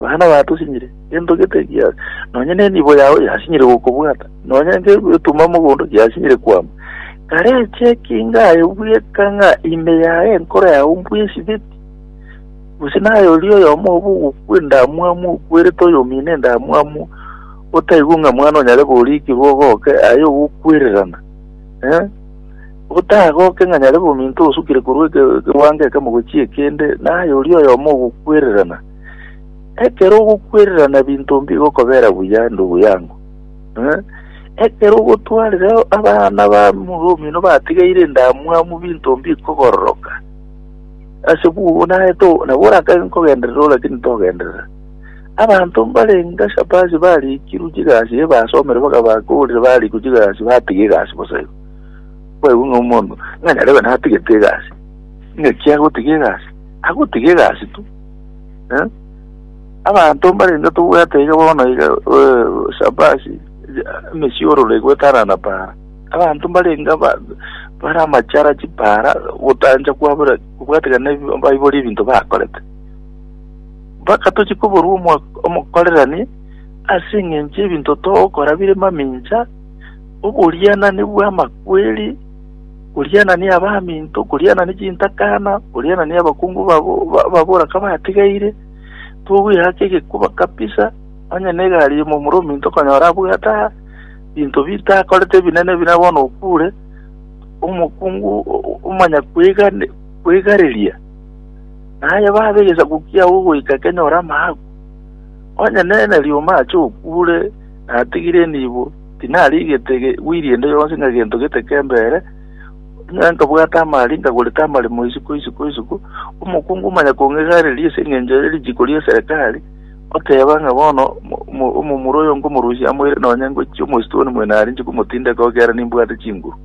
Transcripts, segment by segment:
Baria nabatosinyire, gento gete gia, nonya nenibo yao yasinyire gokobwata, nonya ngegetuma mogondo giasinyire kwama. Kare eche ekinga aye bweka ng'a ime yaye enkoro yao mbwesibeti, gose naye oria oyomo obo ogokwa endamwamu okwerete oyomino endamwamu, otaigwe ng'a mwana onyare gorikirwa ogoke aye ogokwererana, eh? otagoke ng'a nyare bominto osukire korwa eke- ekewango ekemo gochia ekende, naye oria oyomo ogokwererana. Ekero ogokwererana binto mbigokobera buya, ndugu yangu. Eh? Ekero ogotwarire abana ba muro omino batigeire endamwamu binto mbikogororoka. Ase bugo naye to nabo orakage nkogenderera o, lakini togenderera. Abanto mbarenge ase abasi barikirwe chigasi eh, basomire bakabakorire barikwa chigasi batiga egasi bosa igo. Kwaigu ng'a omonto ng'a nyarebe natigete egasi. Ng'aki agotiga egasi? Agotiga egasi tu. Eh? Abanto mbarenge tobwate iga bono iga eh, shabashi emesiororo egwetanana para. Abanto mbarenge aba- bare amachara chipara gotanja kwabura kobwategana ebi- baibori ebinto bakorete. Mpaka tochi koborwa omo- omokorerani ase eng'encho ebinto togokora bire mamincha, oborianani bw'amakweri Koriana ne abaminto, koriana ne chintakana, koriana ne abakungu babora kabatigaire, togweaka egekuba kabisa, onye negari y'omomura ominto okonyora abwo gataha, binto bitakorete ebinene buna bono okure, omokungu omanya kwegareria, na aye babe egesaku kiao ogoika kenyore amaaku. Onye nere rioma ache okure, natigire nibo. Tinarigete gwiri ende yonsi ng'a gento gete kembe ere, onye nkabwate amari nkagorete amaremo isiko isiko isiko, omokungu omanya kong'egariria ase engencho ere richiko ri'eserekari, oteba ng'a bono omomura oyo nkomorusia amoire nonya ngochia omosito one moino arinche komotindeka oo ekiagera nimbwate chinguru.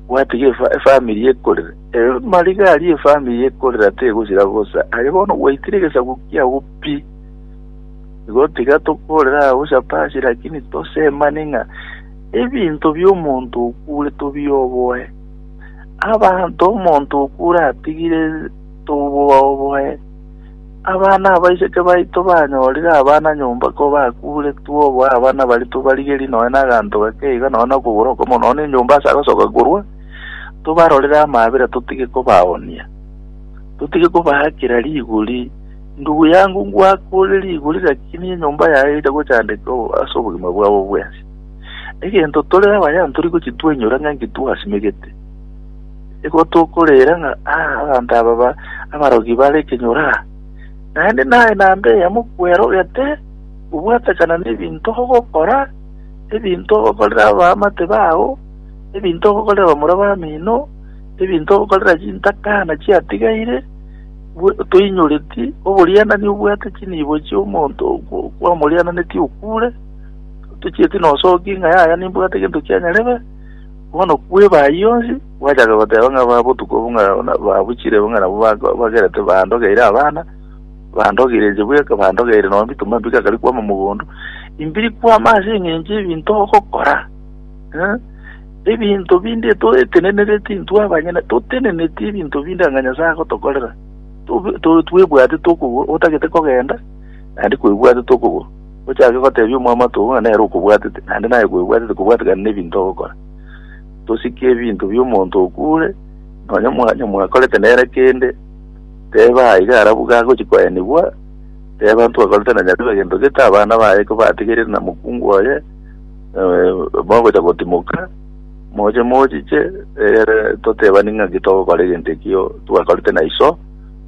Bwati iga efamiri ekorera. Amariga aria efamiri ekorera tegosira bosa. Aye bono gwaitire egesaku kiago pi. Igo tiga tokorere agwo chapasi, lakini tosemane ng'a ebinto bi'omonto okure tobioboe. Abanto omonto okure atigire tobobaoboe. Abana abaiseke baito banyorire abana nyomba ko bakure twoboe abana baria tobarigerie nonya naganto gake iga nonya nokogoro okomo nonya nenyomba ase agosoka korwa, tobarorere amaabera totige kobaoonia. Totige kobaakera rigori. Ndugu yangu, ngwakoorire igoro ri'gaki nigo enyomba yaye eira gochandekwa ase obogima bwabo bwensi. Egento tore abayani tori gochitwainyora ng'a inki twasimegete. Nigo tokorera ng'a, Ah, abanto aba ba abarogi bare ekenyoro aa! Naende naye namba eyemo kwerogete gobwatakana nebinto ogokora, ebinto ogokorera abaamate bao, ebinto ogokorera bamura bamino, ebinto ogokorera chintaka na chiatigaire, Toinyoreti oborianani obwate chinibo chi'omonto kwamoriananetie okure, tochieti nosoki ng'a yaya nimbwate gento kia nyarebe, bono kweba ayio onsi, gwachaka goteba ng'a ba botuko obo ng'a na- babuchire ng'a nabo ba- bagerete bandogeire abana, bandogeire inche bweka, bandogeire nonya bituma mbikakari kwama mogondo, imbiri kwama ase eng'encho y'ebinto ogokora. Eh? Ebinto binde toetenenereti intwe abanyene, toteneneti ebinto binde anga Nyasae agotokorera. Tobe- to- Twebwate tokogwa, otagete kogenda, naende kwebwate tokogwa. Ochake gotebia omwamato oo ng'a nere okobwatete, naende naye kwebwatete kobwatekana n'ebinto ogokora. Tosike ebinto bi'omonto okure, nonya mwanya mwakorete nere kende, teba aye iga arabu gagochi koenigwa, teba ntwakorete na Nyasabe egento gete, abana baye kobategerire na mokungu oye, eh, mogocha gotimoka moche mochiche ere totebani ng'aki togokora egento ekio twakorete na iso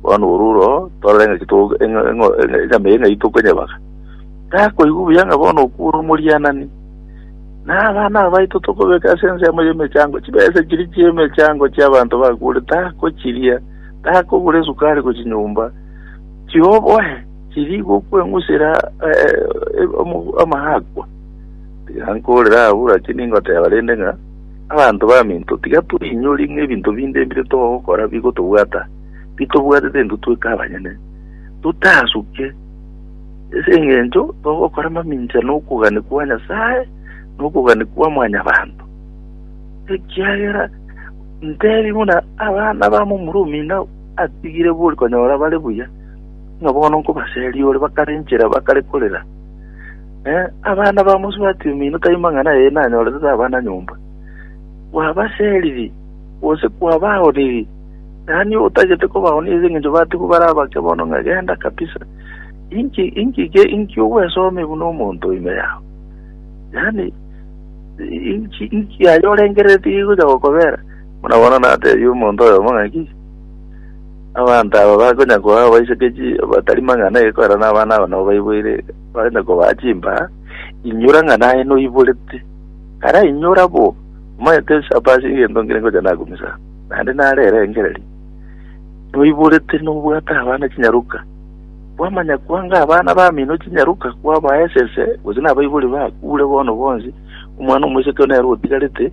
bono oruro torore ng'aki to- eng'o- eng'o- eng'o- enyama eye ng'ai tokonyebaga takoigwa buya ng'a bono okure omorianani na abana abaito tokobeka ase ensemo y'emechango chibesa chiri chi'emechango chi'abanto bakure takochiria takogura esukari gochi nyomba chioboe Tiri gokweng'usera amaakwa, tiga nkorere abwo, lakini ngoteba rende ng'a abanto baminto tiga toinyori ng'a ebinto binde bire togokora bigotobwata bitobwatete intwe tweka abanyene, totasuke ase engencho togokora mamincha nokogania kwa Nyasae na okogania kwa mwanyabanto, ekiagera ntebi buna abana ba momura omino atigire bori konyora bare buya. Ng'a bono nkobaseria ore bakare enchera bakare korera, eh, abana ba mosubati omino tai mang'ana eye nanyorete tabana nyomba. Kwabaseriri, gose kwabaoniri, yaani otagete kobaonia ase engencho batigwe bare abake bono ng'a genda kabisa. Inki inki ge inki ogwesome buna omonto ime yao. Yaani inki inki aye orengerereti gegocha gokobera. Buna bono natebia omonto oyomo ng'aki, Abanto aba bakonya koa abaichokechie batari mang'ana eye korana n'abana aba nabo baiboire, bakonya kobaa chimbaa, Inyora ng'a naye noiborete. Kara inyora bo, omanyete ochapa ase egento nkere ngocha nakumisa, naende nare erengererio. Noiborete nobwate abana chinyaroka. Kwamanya kwanga abana bamino chinyaroka kwabaa esese, gose nabaibori bakure bono bonsi, omwana omoiseke nere otigarete,